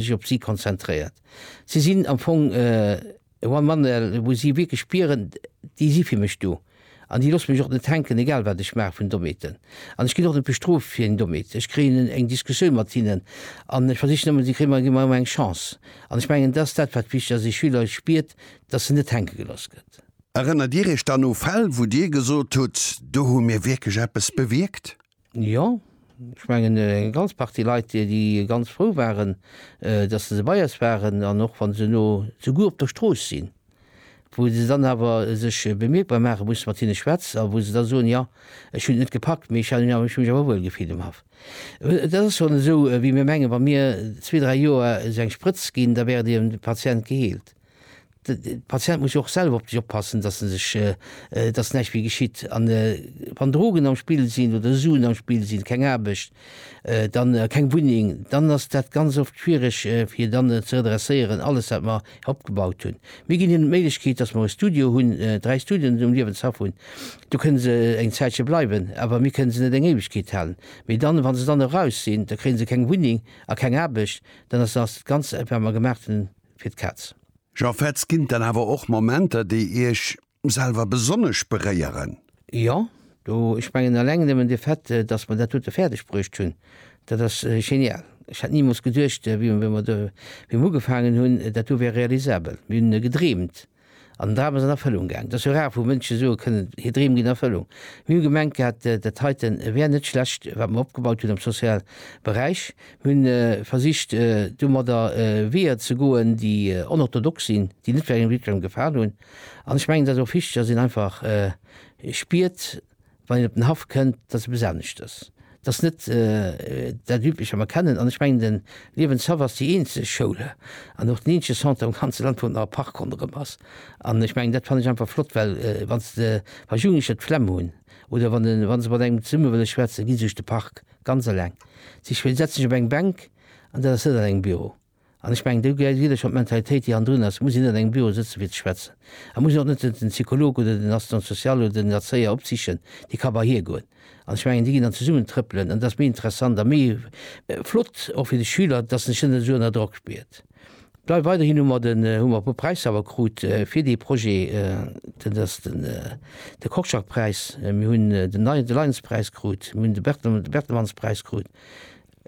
sech op si konzentréiert. Si sinn am Fong e one man el, wou si wierklech spieren, déi si fir mech do an déi loosse mech och net hänken, egal wat ech maache vun dommeten. An ech ginn och net bestrooft fir eng Dommete. Ech kréien eng Diskussioun mat hinnen an ech versichen ëmmer, si kréie mer, gi mer ëmmer eng Chance. An ech mengen, dat ass dat, wat wichteg ass, ee Schüler spiert, dass en net hänke gelooss gëtt. Erënnert Dir Iech dann u Fäll, wou Dir gesot hutt, do hu mir wierklech eppes bewierkt? Jo, ech mengen eng ganz Partie Leit, déi ganz frou waren, datt se bei eis waren an och wa se elo souguer op der Strooss sinn, wou se dann awer sech bemierkbar maache musse mat hinne schwätz a wou se da soen, jo, ech hunn et net gepackt, mee ech hu mech awer wuel gefillt um Haff. Et ass schonn esou, wéi mir mengen, wa mir zwee, dräi Joer esou eng Sprëtz ginn, da wär dee Patient geheelt. De Patient muss jo och selwer op sech oppassen, dass en sech, dass näischt méi geschitt. An wann Drogen am Spill sinn oder Suen am Spill sinn, keng Aarbecht, dann keng Wunneng, dann ass dat ganz oft schwiereg fir dann ze redresséieren alles wat mer opgebaut hunn. Mir ginn hinnen d'Méiglechkeet, dass mer e Studio hunn, dräi Studioen um Liewenshaff hunn. Do kënne se eng Zäitche bleiwen, awer mir kënne se net eng Éiwegkeet halen. Mee dann, wa se dann eraus sinn, da kréie se keng Wunneng a keng Aarbecht, dann ass ass dat Ganzt wat mer gemacht hunn, fir d'Kaz. Jean Fetz, Ginn et dann awer och Momenter, déi Iech selwer besonnesch beréieren? Jo, do, ech mengen eleng nëmmen de Fait, datt mer dat dote fäerdeg bruecht hunn, dat ass genial. Ech hätt nimools geduecht, wéi mer ugefaangen hunn, dat do wär realisabel. Mir hunn gedreemt. An den Dram ass an Erfëllung gaang. Et ass jo rar, wou Mënsche soe kënnen, hir Dreem ginn Erfëllung. Mir hu gemengt gehat, dat heiten wär net schlecht, wat mer opgebaut hunn am soziale Beräich. Mir hunn versicht, domadder Weeër ze goen, déi onorthodox sinn, déi net jidderengem gefalen hunn. An ech mengen, et ass och wichteg, dass een einfach spiert, wann een op den Haff kënnt, dass eppes anescht ass, dass net dat Üblecht, wat mer kennen. An ech mengen, de Liewenshaff ass déi eenzeg Schoul an och den eenzege Centre am ganze Land, wou nach e Park ronderëm ass. An ech mengen, dat fannen ech einfach flott, well wann s de, wa Jugendlecher d'Flemm hunn oder wann de, wa se mat engem zesumme wëlle schwätzen, gi se sech de Park ganz eleng sichen, well déi setze sech op eng Bänk an dat ass net an engem Büro. An ech mengen, do gehéiert jidderee schonn d'Mentalitéit, déi hannendrun ass. Et muss een net an engem Büro sëtzen, fir ze schwätzen. Et muss een och net den Psycholog oder den Assistant social oder den Erzéier opsichen. Dee ka bei hie goen. An ech mengen, déi ginn dann zesummen trëppelen. An dat ass méi interessant a méi flott och fir de Schüler, dass en sech net esou ënner Drock spiert. Bleift weiderhin hu mer den, hu mer e puer Präisser awer krut fir dee Projet. Dat ass den, de Korczak-Präis, mir hunn den Lions-Präis krut, mir hunn de Bertelsmanns-Präis krut.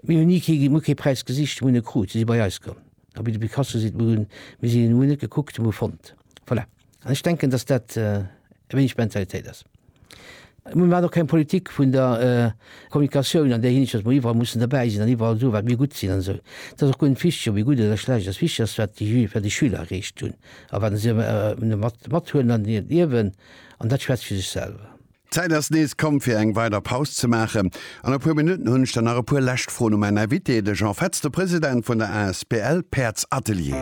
Mir hunn ni kee, mir hu kee Präis gesicht, mir hunn e krut, si si bei eis komm. A wéi de Picasso seet, mir hunn, mir sinn, mir hunn net gekuckt, mir hu fonnt. Voilà. An ech denken, datt dat e wéineg d'Mentalitéit ass. Mir maachen och keng Politik vun der Kommunikatioun an där Hinsicht, datt mer iwwerall mussen derbäi sinn an iwwerall soen, wat mir gutt sinn an esou. Et ass och guer net wichteg, ob ee gutt oder schlecht ass. Wichteg ass, wat déi Jü, wat déi Schüler erreecht hunn a wat se mat, mathuelen an hiert Liewen. An dat schwätzt fir sech selwer. D'Zäit ass nees komm fir eng weider Paus ze maachen. An e puer Minutten hunn ech dann nach e puer lescht Froen u mäin Invité, de Jean Fetz, de President vun der asbl Päerdsatelier.